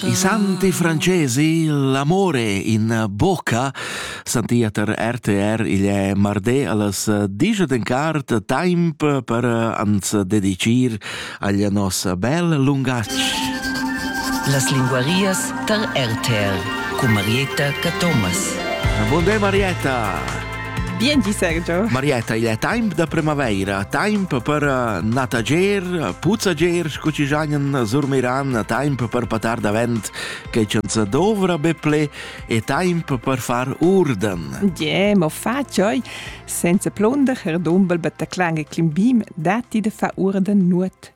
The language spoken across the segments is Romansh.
I santi francesi l'amore in bocca santia ter RTR il è marde allas digia den cart temp per ans dedicir al nos bel lungatg. Las linguarias tar RTR cu Marietta Cathomas. Bonde Marietta! Bien di Sergio. Marietta, il è temp da primavaira, temp per eh, natager, puzzager, scu ci giagnan surmiran, temp per patar davent che ci dovra be ple e temp per far urden. Yeah, ma fa cioi senza plunder er dumbel bet da clang e climbim, datti de fa urden nuot.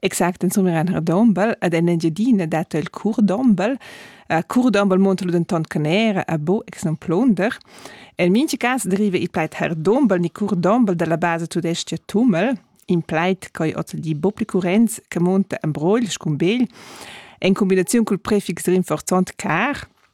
Exact insomma ein redombel ed en Engiadina dat el curdombel. Uh, curdombel monta lu denton canera a bo ex non plunder. En minchi cas deriva il plaid herdombel ni curdombel dalla basa tudesca Tummel, in plaid coi oz di Boplikurenz che monta en brogl scumbegl en combinaziun col prefix rinforzont car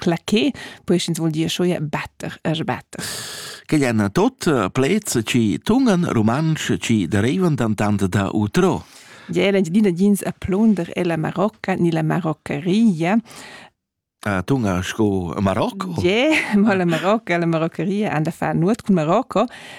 claché, poi ins vuol dir scho ja better, er better. Quegl èn tot plets chi tungan rumantsch chi derivan dantand da utro. Ja, l'Engiadina jins a plunder è la Marocca ni la Maroccaria. Uh, tunga sco Marocco? Ja, yeah, ma la Marocca, la Maroccaria an da far nuot cun Marocco.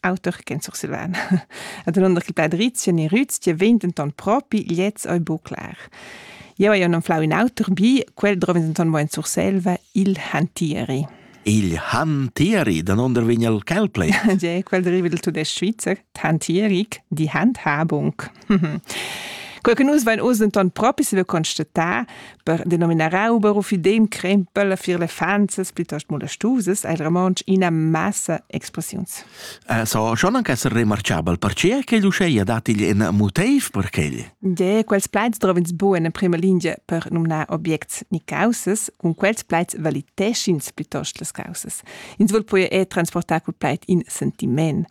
auter che Sursilvan. Ad un che pladrizia ne rüzia vent denton propi gliez ei bu clar. Jeu hai non flau in auter bi, quel drova denton mo in Surselva, il Hantieri. Il Hantieri, den onder vegn el Calplay. Ja, quel deriva del tudestg Schweizer, Hantieric, die Handhabung. Quei che nus vein oz denton propi saviu constatar, per denominar Rauber u fidem crempel fier lefanzas plitost molestusas, ha il romontsch ina massa expressiuns. Eh, so schon anche essere remarchabel, perché che l'uscheia dat igl in motiv per quel? De, quels plaids trovins bu in prima linea per nomnar obiects ni causas, cun quels plaids valiteschins plitost las causas. Ins vol poi er transportar quel plaid in sentiment.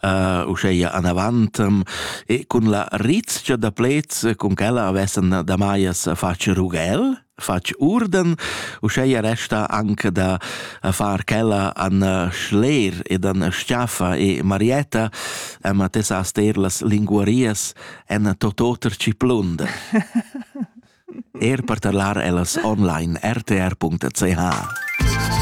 uh, uscheia anavantem e cun la rizcha da plets cun quella avessen da maias fatg rughel fatg urden, uscheia resta anche da far quella an schler ed an schiaffa e Marietta ma te sa ster las linguarias en tototer ciplund. er per tarlar ellas online rtr.ch.